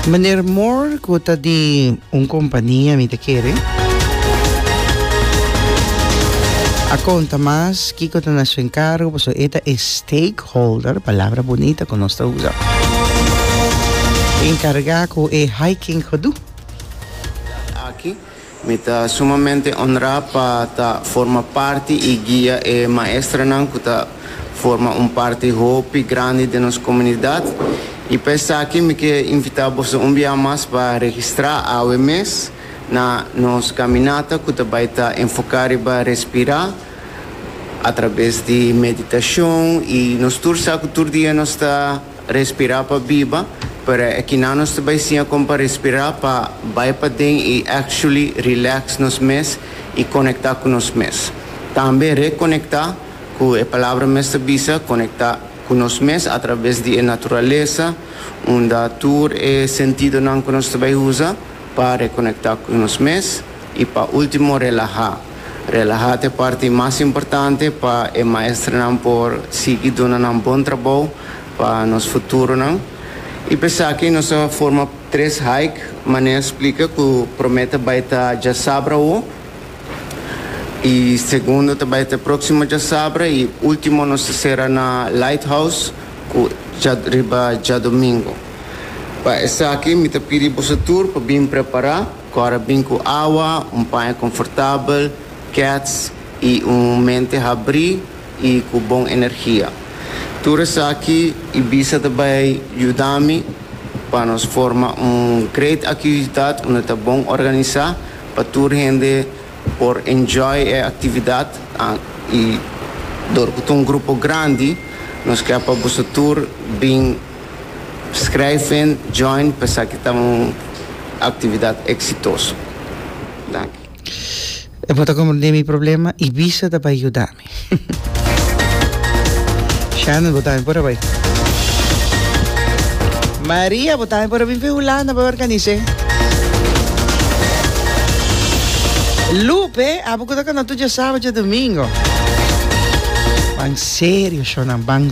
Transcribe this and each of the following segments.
Meneer Moore, cu ta di un compania, mi ta kere a conta mas kico ta na su encargo, pasobra e ta e stakeholder, palabra bunita cu nos ta usa, encarga cu e hiking gedoe. Mi ta sumamente onrá pa ta forma parti i guia e maestranan ku ta forma un parti hopi grandi den nos komunidat. I pa esaki mi ke invitá boso un bia mas pa registrá awe mes na nos kaminata ku ta bai ta enfoká riba respirá atrabes di meditashon i nos tur sa ku tur dia nos ta. Respirá pa biba, pero e kinan nos ta bai siña kon pa respirá pa bai paden i actually relax nos mes i konektá ku nos mes. Tambe rekonektá ku e palabra mes ta bisa, konektá ku nos mes atraves di e naturalesa unda tur e sentidonan ku nos ta bai usa pa rekonektá ku nos mes i pa último relahá. Relaha ta e parti mas importante pa e maestrenan por sigui duna nan bon trabou pa nos futuronan. I p'esaki nos a forma tres hike, manera a splika ku promé ta bai ta djasabra awo, i segundo ta bai ta próksimo djasabra i último nos ta sera na Lighthouse ku dja riba djadomingu. Pa esaki mi ta pidi boso tur pa bin prepará. Kòrè bin ku awa, un paña konfortabel, kèts i un mente habrí i ku bon energia. Tur esaki i bisa ta bai yuda mi pa nos forma un great aktividat unda ta bon organisá pa tur hende por enjoy e aktividat i dor ku ta un grupo grandi nos ke pa boso tur bin Schrijven join pensaki ta un actividad exitoso. Danki. E por ta comprende mi problema y bisa ta bay yuda mi. Shannon, bo tambe por a bay. Maria, bo tambe por a bin fen Hulanda bay organise. Lupe, abo cu ta cana tur dje sabado dje domingo. Ban serio, Shonnan, ban.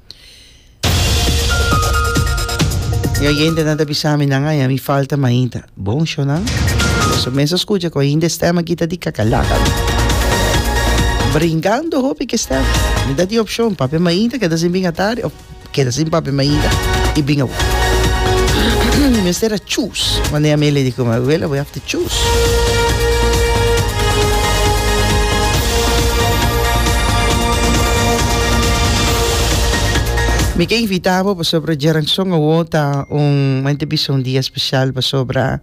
Mi oyentenan ta bisa mi nan aya mi falta mainta. Bon show nan. Los mensen escucha con hinde stem aquí ta di cacalaca. Brincando hopi que stem. Mi da di opción papi mainta queda sin binga tarde of queda sin papi mainta y binga. Mister a choose. Wanneer mi lady come away, we have to Mi ke invita bo pasobra Geranson awo ta un mente bisa un dia special pasobra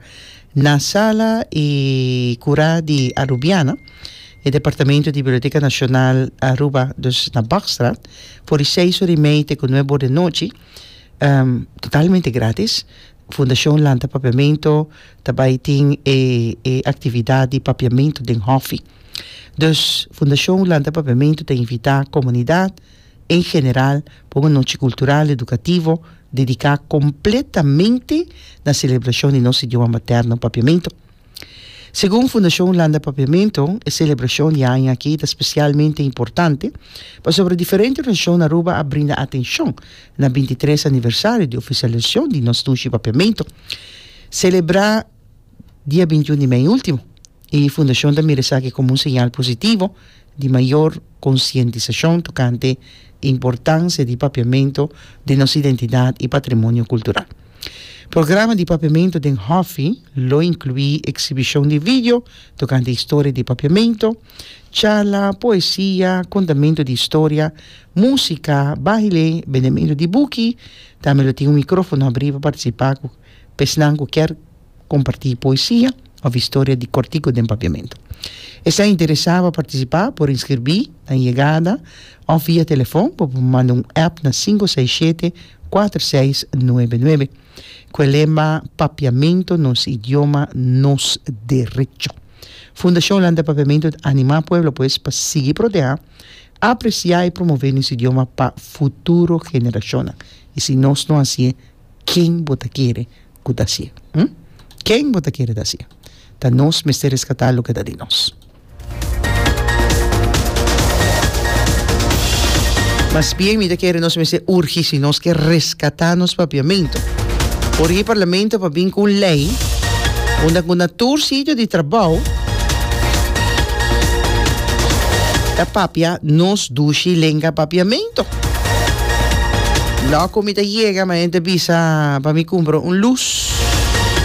na sala y cura di Arubiana e departamento di Biblioteca Nacional Aruba dus na Bakstraat for di seis ora y mei te cu nuebe ora di nochi totalmente gratis Fundashon Lanta Papiamentu ta bai tin e e aktividat di papiamentu den hòfi. Dus Fundashon Lanta Papiamentu ta invitá komunidat en general pa un anochi kultural edukativo dediká kompletamente na selebrashon di nos idioma materno, papiamentu. Segun Fundashon Landa Papiamentu, e selebrashon di aña aki ta spesialmente importante pasobra diferente organisashon na Aruba a brinda atenshon na binti tres aniversario di ofisialisashon di nos Tushi Papiamentu, selebrá dia binti un di mei último, i Fundashon ta mira esaki komo un señal positivo di mayor konsientisashon tokante importansia di papiamentu den nos identidat i patrimonio kultural. Programa di papiamentu den hòfi lo inkluí eksibishon di video tokante historia di papiamentu, charla, poesia, kontamentu di historia, músika, baile, bendementu di buki, tambe lo tin un mikrófono abrí pa partisipá ku pesnan ku kier kompartí poesia òf historia di kòrtiku den Papiamentu. Esei interesá pa partisipá por inskirbí na yegada òf via telefòn bo por manda un app na sinku seis shete kuater seis nuebe nuebe ku e lema Papiamentu nos idioma nos derecho. Fundashon Land di Papiamentu ta animá pueblo pues pa sigui protehá, apresiá i promové nos idioma pa futuro generashonnan. I si nos no hasié, ken bo ta kere? ku ta hasié. Hm? Ken bo ta kere ta hasié? Ta nos mester reskatá loke ta di nos. Mas bien mi ta kere nos mester urgi si nos ke reskatá nos papiamentu. Por e parlamento pa bin ku un lei unda ku na tur sitio di trabou ta papia nos dushi lenga papiamentu. Loco mi ta yega, ma ente bisa pa mi cumpra un luz.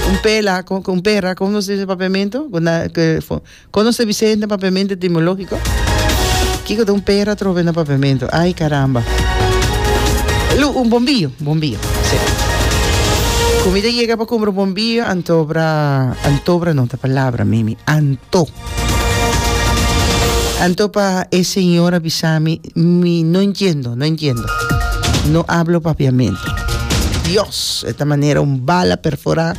Un pela, con, un pera, como nos dice papiamento? Cuando se Vicente papiamento etimológico? Kiko de un pera trove na papiamento? Ay, caramba. Lu, un bombillo, bombillo, sí. Comida llega pa cumpra un bombillo, antobra, antobra no, ta palabra, mimi, anto. Anto pa e señora bisami Mi no entiendo, no entiendo. No hablo papiamento. Dios, e ta manera un bala perfora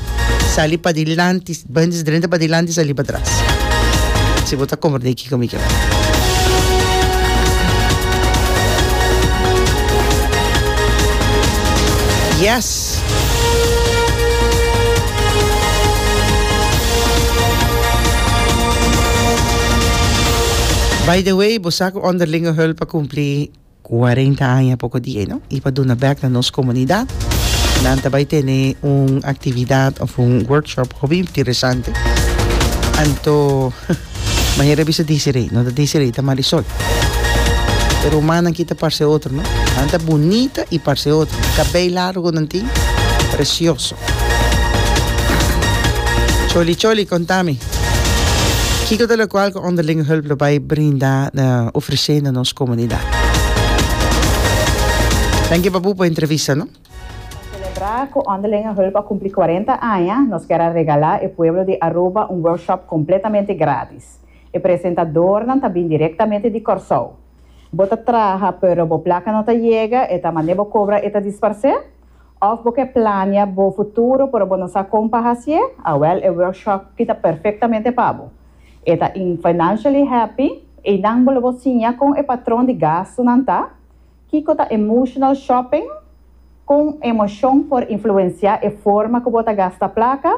sali padilanti, bens drenta padilanti sali patras. Si bo ta comprende kiko mi tabata. Yes! By the way, bo sa cu Onderlinge Hulp a cumpli cuarenta aña poco di e, no? Y pa duna bek na nos comunidad, nan ta bay tene un actividad of un workshop hopi interesante. Anto. M'a yera bisa disi rei, no ta disi rei ta Marisol. E rumannan aki ta parse otro, no. Nan ta bunita i parse otro. E kabei largo ku nan tin, presioso. Choli Choli, konta mi, kiko ta lokual ku Onderlingenhulp lo bai brinda, ofresé na nos komunidat? Danki papu pa e entrevista, no. Pa selebrá cu Onderlinge Hulp a cumpli cuarenta aña, nos kier a regalá e pueblo di Aruba un workshop completamente gratis. E presentadornan ta bin directamente di Corsou. Bo ta traha pero bo placa no ta yega, e ta mane bo cobra e ta disparcé? Of bo ke plania bo futuro pero bo no sa con pa hacié? Awel e workshop ki ta perfectamente pa bo. E ta in Financially Happy, einan bo lo bo siña con e patron di gastonan ta. Kiko ta emotional shopping? Kon emoshon por influensiá e forma ku bo ta gasta plaka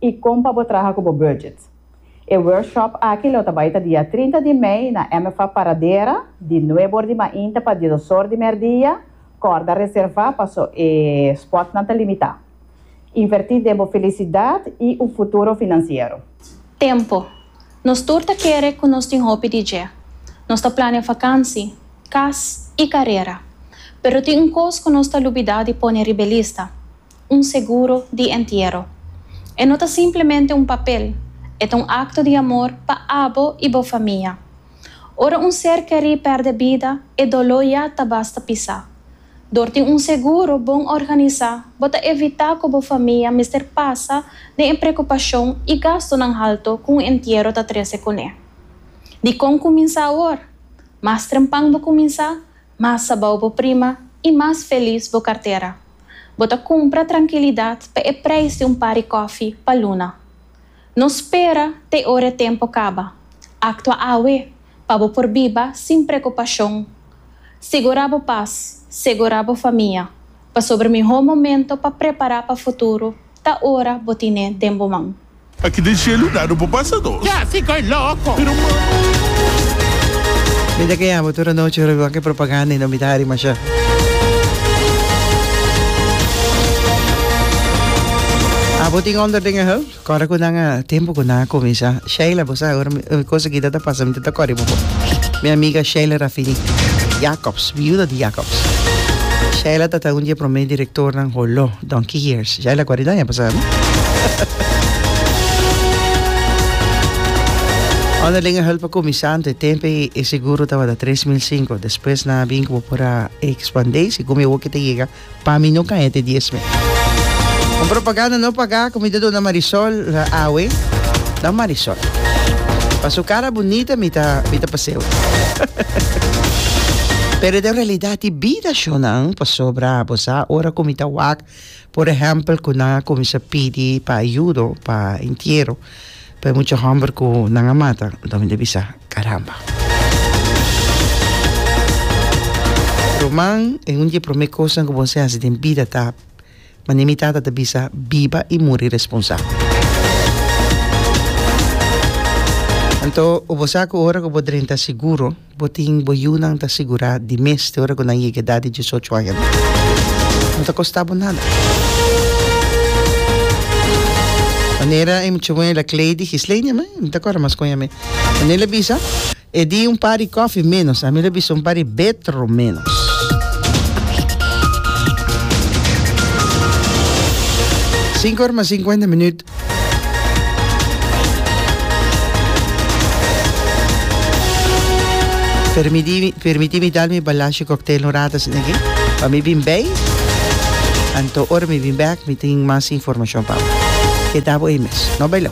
i kon pa bo traha ku bo budget? E workshop aki lo ta bai ta dia trinta di mei na MFA Paradera, di nuebe or di mainta pa diesos or di merdia. Kòrda reservá paso e spòtnan ta limitá. Invertí den bo felisidat i un futuro finansiero. Tempo, Nos tur ta kere ku nos tin hopi di dje. Nos ta planea fakansi, kas i karera. Pero tin un kos ku nos ta lubidá di pone riba e lista, un seguro di entiero. E no ta simplemente un papel, e ta un akto di amor pa abo i bo famia. Ora un ser kerí pèrdè bida, e doló ya ta basta pisá. Dor tin un seguro bon organisá, bo ta evitá ku bo famia mester pasa den e preokupashon i gastunan haltu ku un entiero ta trese kuné. Dikon kuminsá awor? Mas trempan bo kuminsá, mas sabou bo prima i mas felis bo kartera. Bo ta kumpra trankilidat pa e preis di un par di kòfi pa luna. No spera te ora e tempo caba. Actua awe pa bo por biba sin preocupacion. Sigura bo paz, segura bo famia, pasobra miho momento pa prepara pa futuro ta ora bo tine den bo man. Aki den cielo na no por pasa nos. Mi ta kea bo tur anochi ora mi wak e propaganda y no mi ta hari masha. Abo tin onderdingen he? Kòrda ku nan a tempu ku nan a kuminsá Sheila bo sa awor mi kosa kita ta pasa mi ta ta kòrdi bo bo mi amiga Sheila Rafini Jacobs viuda di Jacobs Sheila ta ta un di e promé direktornan holó donkey years Sheila kòrdi nan ya bo sa no Onderlinge hulp pa kuminsá nto e tempu ei e seguro tabata tres mil sinku despues nan a bin ku bo por a ekspandé si ku mi woki ta yega Pa mi no cae te dies me. Un propaganda no paga cu mi ta duna Marisol awe. Dan Marisol. Pa su cara bunita mi ta mi ta paseo. Pero e ta realidad di bida shonan pasobra bo sa ora cu mi ta wak por ehempel cu nan a cuminsa pidi pa ayudo pa entiero. Pa e mucha homber ku nan a mata, anto mi ta bisa, Karamba! Roman, E un di e promé kosnan ku bo mester hasi den bida ta, Mane mi tata ta bisa, Biba i muri responsabel. Anto, bo sa ku ora ku bo drenta siguro. Bo tin bo yunan ta sigurá di mes te ora ku nan yega edat di diesocho aña. No ta kostá bo nada. Manera e muchamuel a klei di Gislenia, mi no ta kòrda mas kon yami. Manera el a bisa, E di un par di kòfi ménos. Ami lo bisa un par di betro ménos. Sinku ora mas sinkuenta minüt. Permitimi, permitimi dal mi balashi cocktail un rato sin aquí. Pa mi bin bay. Anto or mi bin back, mi tin mas información pa. Quedabo ahí mes. No bailo.